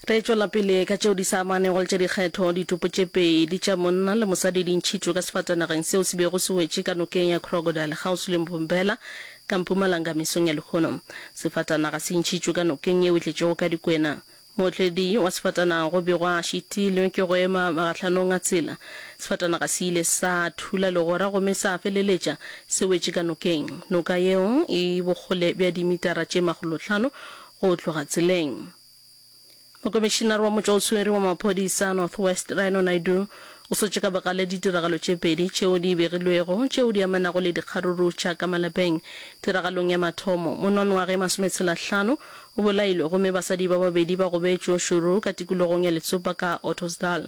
Re tšwela pele ka tšeo di sa amanego le tša dikgetho. Ditopo tše pedi tša monna le mosadi di ntšhitšwe ka sefatanageng seo se bego se wetše ka nokeng ya Crocodile kgauswi le Mbombela ka mpumalanga mesong ya lehono. Sefatanaga se ntšhitšwe ka nokeng yeo e tletšego ka dikwena. Mootledi wa sefatanaga go begwa a šitilwe ke go ema magahlanong a tsela. Sefatanaga se ile sa thula legora gomme sa feleletša se wetše ka nokeng. Noka yeo e bokgole bja dimitara tše makgolohlano go tloga tseleng. Mokomišinare wa motšwa o swere wa maphodisa a North West, Rhino Naidoo, o swetše ka bogale ditiragalo tše pedi tšeo di begilwego tšeo di amanago le dikgaruru tša ka malapeng. Tiragalong ya mathomo, mononwage masometshelahlano o bolailwe gomme basadi ba babedi ba gobetšwe šoro ka tikologong ya Letsopa ka Ottosdal.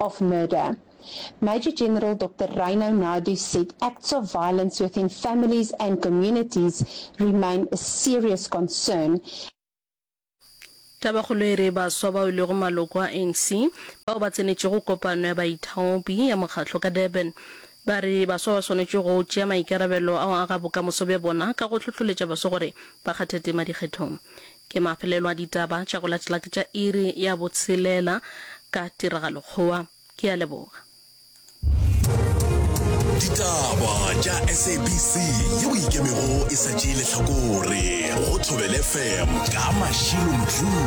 of murder. Major General Doctor Rhino Nadu said acts of violence within families and communities remain a serious concern. Tabakgolo e re baswa bao e lego maloko a ANC bao ba tsenetšego kopano ya baithaopi ya mokgatlo ka Durban ba re baswa ba swanetše go tšea maikarabelo a go aga bokamoso bja bona ka go hlohloletša baswa gore ba kgathe tema dikgethong. Ke mafelelo a ditaba tša go latela ke tša iri ya botshelela ka Tiragalokgowa. Ke a leboga. Ditaba tša SABC yeo e ikemego e sa tšee lehlakore go Thobelefm ka Mashilo Modjule.